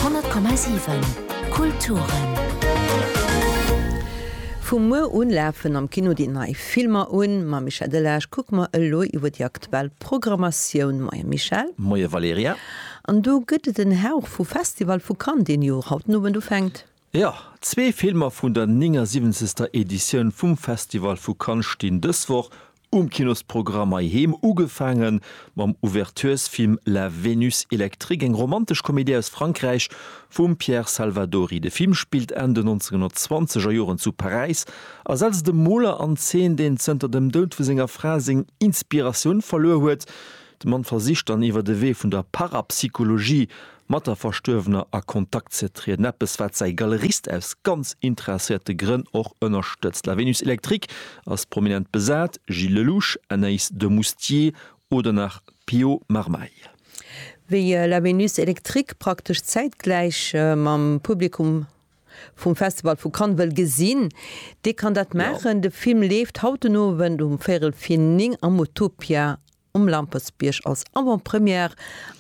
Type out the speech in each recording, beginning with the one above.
100,7 Kulturen. Vu muer un lafen am Kino déi nei Filmer un. Mam Michel Delage kucke mer elo iwwer déi aktuell Programmatioun. Moien Michel. Moien Valerija. An do gëtt et en Hauch vu Festival vu Cannes deen jo haut den Owend ufänkt. Jo, zwee Filmer vun der 79. Editioun vum Festival vu Cannes stinn dës Woch um Kinosprogramm hei heem. Ugefaange mam Ouverturesfilm La Vénus électrique, eng romantesch Komedie aus Frankräich vum Pierre Salvadori. De Film spillt Enn den 1920 er Joren zu Paräis a setzt e Moler an Zeen, deen zënter dem Doud vu senger Fra seng Inspiratioun verluer huet. De Mann versicht dann iwwer de Wee vun der Parapsychologie mat der Verstuerwener a Kontakt ze trieden, eppes wat säi Galerist aus ganz interesséierte Grënn och ënnerstëtzt. La Vénus Électrique ass prominent besat, Gilles Lellouche, Anaïs de Moustier oder nach Pio Marmaille. Wéi La Vénus Électrique praktesch zäitgläich mam Publikum vum Festival vu Cannes wëll gesinn, dee kann dat maachen. De Film leeft haut den Owend um véierel vir 9 am Utopia Um Lampertsbierg als Avant-Première.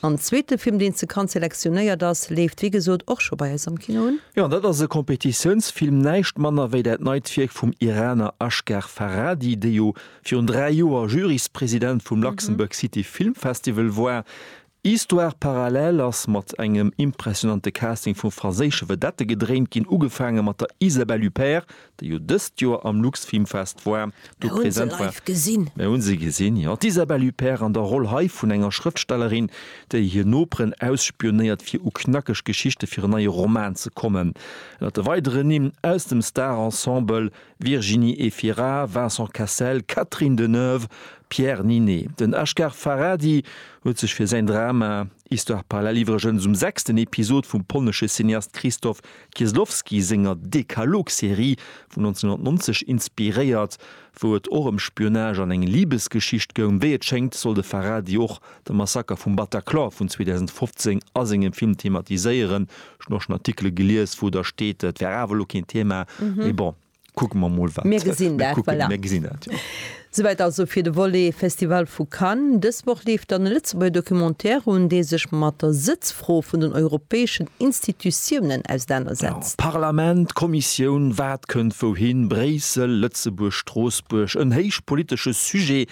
En zweete Film, deen zu Cannes selektionéiert ass, leeft wéi gesot och scho bei eis am Kino un. Jo, an dat ass e Kompetitiounsfilm, näischt manner wéi dat neit Wierk vum Iraner Asghar Farhadi, dee jo virun dräi Joer Juryspresident vum Luxembourg City Film Festival war. Histoire parallèle ass mat engem impressionante Casting vu franséische Vedette gedréint ginn, ugefaange mat der Isabelle Huppert, déi jo dëst Joer am LuxFilmFest war, do present war. Mir hu se gesinn, jo. D'Isabelle Huppert an der Roll hei vun enger Schrëftstellerin, déi hir Noperen ausspionéiert, fir u knackeg Geschichte fir en neie Roman ze kommen. Ënnert de weideren Nimm aus dem Star-Ensemble Virginie Efira, Vincent Cassel, Catherine Deneuve, Pierre Ninet. Den Asghar Farhadi huet sech fir säin Drama Histoire parallèle iwwregens um sechsten Episod vum polnesche Cineast Krzysztof Kieslowski senger Dekalog-Serie vun 1990 inspiréiert, wou et och ëm Spionage an eng Libesgeschicht goung. Wéi et schéngt, soll de Farhadi och de Massaker vum Bataclan vun 2015 a sengem Film thematiséieren. Ech hunn och schonn Artikele gelies, wou da steet, et wär awer elo keen Thema. Mee bon, kucke mer mol, wat mir gesinn. Mir kucken, mir gesinn dat, jo. Souwäit also fir de Volet Festival vu Cannes. Dës Woch leeft dann e Lëtzebuerger Documentaire un, dee sech mat der Sëtzfro vun den europäeschen Institutiounen ausernanersetzt. Parlament, Kommissioun, wat kënnt wouhin, Bréissel, Lëtzebuerg, Stroossbuerg, en héich politesche Sujet,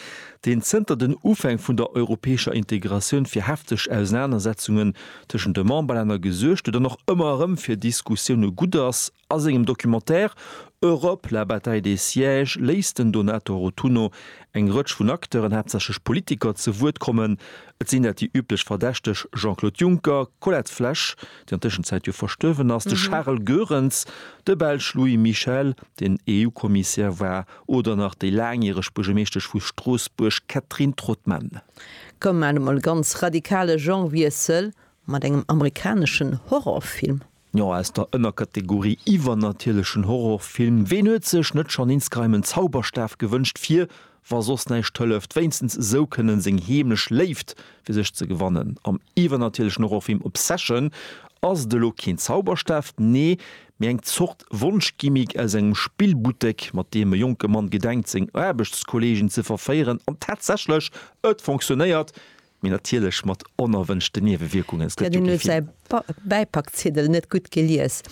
deen zënter den Ufäng vun der europäescher Integratioun fir hefteg Ausenanersetzungen tëschent de Memberlänner gesuergt huet an och ëmmer erëm fir Diskussioune gutt ass, a sengem Documentaire Europe, la bataille des sièges léisst den Donato Rotunno eng Rëtsch vun Acteuren, haaptsächlech Politiker, ze Wuert kommen. Et sinn dat déi üblech Verdächteg, Jean-Claude Juncker, d'Colette Flesch, déi an Tëschenzäit jo verstuerwen ass, de Charles Goerens, de Belsch Louis Michel, deen EU-Kommissär war, Oder nach déi laangjäreg Buergermeeschtesch vu Stroossbuerg Catherine Trautmann. Koum maat emol ganz radikale Genrewiessel mat engem amerikaneschen Horrorfilm. Jo, aus der Ënnerkategorie iwwernatierlechen Horrorfilm, ween huet sech net schon insgeheim en Zauberstaf gewënscht fir, wa soss näischt hëlleft, wéinstens esou kënnen seng heemlech Léift fir sech ze gewannen? Am iwwernatierlechen Horrorfilm Obsession ass et elo keen Zauberstaf, nee mee eng Zort Wonschgimmick aus engem Spillbuttek, mat deem e jonke Mann gedenkt, seng Aarbechtskolleegen ze verféieren. An tatsächlech, et fonctionéiert, mee natierlech mat onerwënschten Niewewierkungen. S, Hätt een elo säi Bäipackziddel net gutt gelies.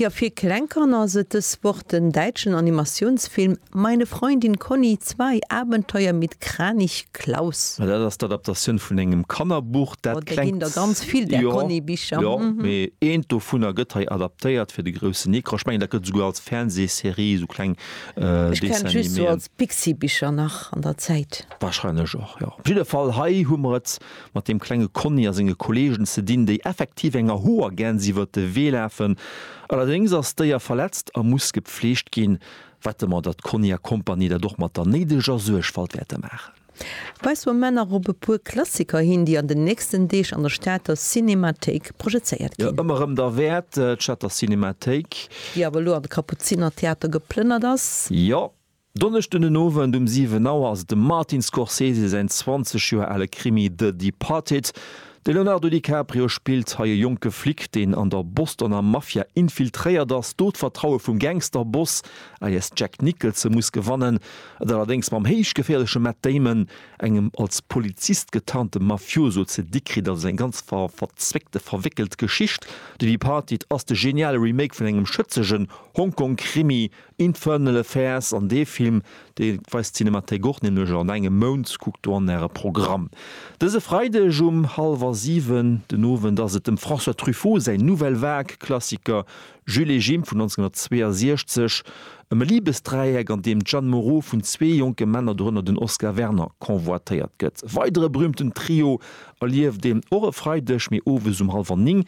Jo, fir kleng Kanner ass et dës Woch den däitschen Animatiounsfilm Meine Freundin Conny, Zwei Abenteuer mit Kranich Klaus. Ma dat ass d'Adaptatioun vun engem Kannerbuch. Dat klengt. Oh, der ginn der ganz vill där Conny-Bicher. Jo, jo, mee eent dovunner gëtt hei adaptéiert fir de groussen Ecran. Ech mengen, dat gëtt esouguer als Fernsehserie, esou kleng Dessiniméen. Ech kennt just esou als Pixibicher nach an der Zäit. Wahrscheinlech och, jo. Op jidde Fall, hei hu mer et mat deem klenge Conny a senge Kolleegen ze dinn, déi effektiv enger Hoergäns iwwert de Wee lafen. Allerdéngs ass d'Déier verletzt a muss gepfleegt ginn. Wette mer, datt Conny a Kompanie dat och mat der néideger Suergfalt wäerte maachen. Weise mer nach op e puer Klassiker hin, déi an den nächsten Deeg an der Stater Cinemathéik projezéiert ginn. Jo, ëmmer erëm derwäert, d'Stater Cinemathéik. Déi awer elo an de Kapuzinertheater geplënnert ass. Jo, Donneschden den Owend um 7 Auer ass et dem Martin Scorsese säin 20 Joer ale Krimi The Departed. De Leonardo DiCaprio spillt hei e jonke Flic, deen an der Bostoner Mafia infiltréiert ass, do d'Vertraue vum Gangster-Boss, alias Jack Nicholson, muss gewannen, et allerdéngs mam héichgeféierleche Matt Damon, engem als Polizist getarnte Mafioso, ze di kritt. Also eng ganz verzwéckte, verwéckelt Geschicht. The Departed ass de geniale Remake vun engem schëtzegen Hongkong-Krimi, Infernal Affairs an dee Film, dee weist d'Cinémathèque och, nämlech an engem Mount. Kuckt do an Äre Programm. Dëse Freideg um hallwer siwen den Owend ass et dem François Truffaut säin Nouvelle Vague Klassiker Jules et Jim vun 1962, ëm e Libesdräieck, an deem d'Jeanne Moreau vun zwee jonke Männer, dorënner den Oscar Werner, convoitéiert gëtt. E weidere berüümten Trio erlieft een och e Freideg, mee owes um hallwer ning.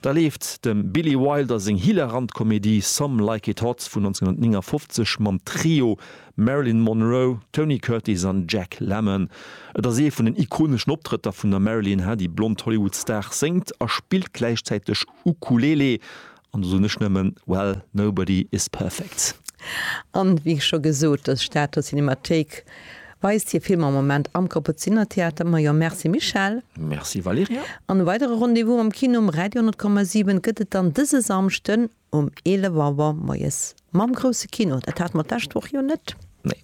Da leeft dem Billy Wilder seng hilarant Komedie Some Like It Hot vun 1959 mam Trio Marilyn Monroe, Tony Curtis an Jack Lemmon. Et ass ee vun den ikoneschen Optrëtter vun der Marilyn, hat déi blond Hollywood-Star séngt a spillt gläichzäiteg Ukulele. An do soen ech nëmmen, Well, nobody is perfect. An wéi scho gesot, ass d'Stater Cinemathéik. Weist hir Filmer am Moment am Kaputziner Theater. Ma jo, Merci Michèle. Merci Valerija. An e weidere Rendez-vous am Kino um Radio 10,7 gëtt et dann dëse Samschden um 11 Auer moies mam Grousse Kino. Dat hate mer d'lescht Woch jo net. Nee.